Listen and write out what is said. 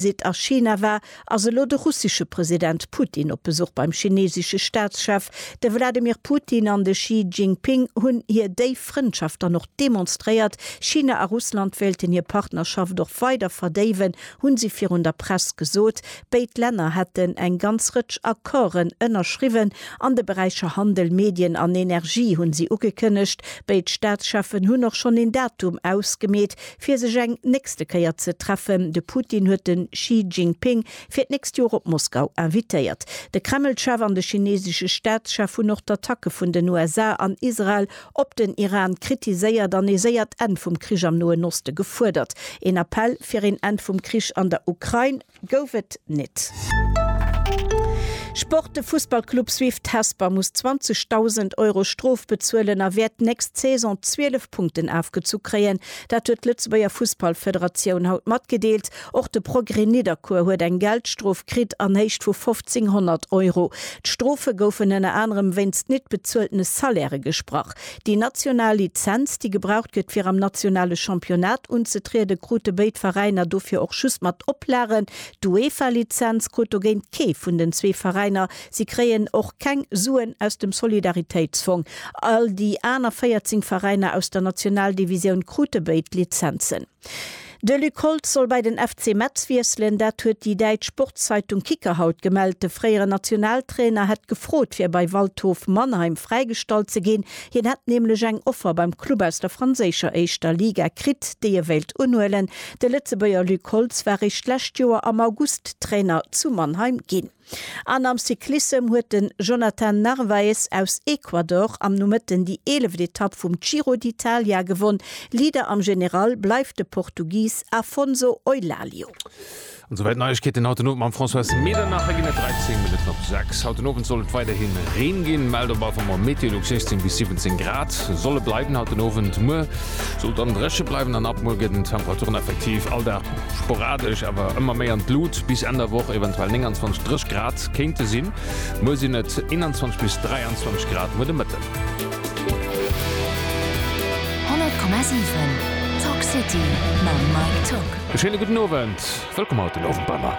Sidd a China war, ass elo de russesche President Putin op Besuch beim chinesesche Staatschef. De Wladimir Putin an de Xi Jinping hunn hir déif Frëndschaft dann och demonstréiert. China a Russland wéilten hir Partnerschaft och weider verdéiwen, hu si virun der Press gesot. Béid Länner hätten eng ganz Rëtsch Accorden ënnerschriwwen an de Beräicher Handel, Medien an Energie, hu si ugekënnegt. Béid Staatscheffen hunn och schonn een Datum ausgemeet, fir sech eng nächste Kéier ze treffen. De Putin huet de Xi Jinping fir d'nächst Joer op Moskau invitéiert. De Kreml-Chef an de chinesesche Staatschef hunn och d'Attacke vun den USA an Israel op den Iran kritiséiert an ee séiert Enn vum Krich am Noen Oste gefuerdert. Een Appell fir een Enn vum Krich an der Ukrain. Gouf et nit. Sport, De Fussballclub Swift Hesper muss 20.000 Euro Strof bezuelen a wäert d'nächst Saison 12 Punkten afgezu kréien. Dat huet d'Lëtzebuerger Fussballfederatioun haut matgedeelt. Och de Progrès Nidderkuer huet eng Geldstrof kritt an Héicht vu 1.500 Euro. D'Strofe goufen ënner anerem wéinst nit bezueltene Salairë gesprach. Déi national Lizenz, déi gebraucht gëtt fir am nationale Championnat unzetrieden, krute béid Veräiner dofir och just mat Oplagen. D'UEFA-Lizenz krut dogéint kee vun den zwee Veräiner. Si kréien och keng Suen aus dem Solidaritéitsfong. All déi aner 14 Veräiner aus der Nationaldivisioun krute béid Lizenzen. De Luc Holtz soll bei den FC Metz wiesselen. Dat huet déi däitsch Sportszeitung Kicker haut gemellt. De fréieren Nationaltrainer hätt gefrot, fir bei Waldhof Mannheim fräigestallt ze ginn. Hien hätt nämlech eng Offer beim Club aus der franséischer éischter Liga kritt, déi e wéilt unhuelen. De Lëtzebuerger Luc Holtz war réischt d'lescht Joer am August Trainer zu Mannheim ginn. An am Cyclissem huet den Jonathan Narvaez aus Ecuador am Nomëtten déi eeleft Etapp vum Giro d'Italia gewonn. Leader am General bleift de Portugis Afonso Eulaglio. An souwäit d'Neiegkeeten haut den Owend mam Françoise Medernach. Et ginn et 13 Minutten op 6. Haut den Owend soll et weiderhi Reen ginn, mellt op Alphamore Meteolux 16 bis 17 Grad soll et bleiwen haut den Owend. Muer soll dann dréche bleiwen an ab muer gëtt den Temperaturen effektiv all Dag Sporadesch awer ëmmer méi an d'Lut, bis Enn der Woch eventuell 29, 30 Grad kéinte sinn. Muer sinn et 21 bis 23 Grad no de Mëtten. 100,7 Talk City mam Mike Tock. E schéine gudden Owend, wëllkomm haut den Owend bei mer.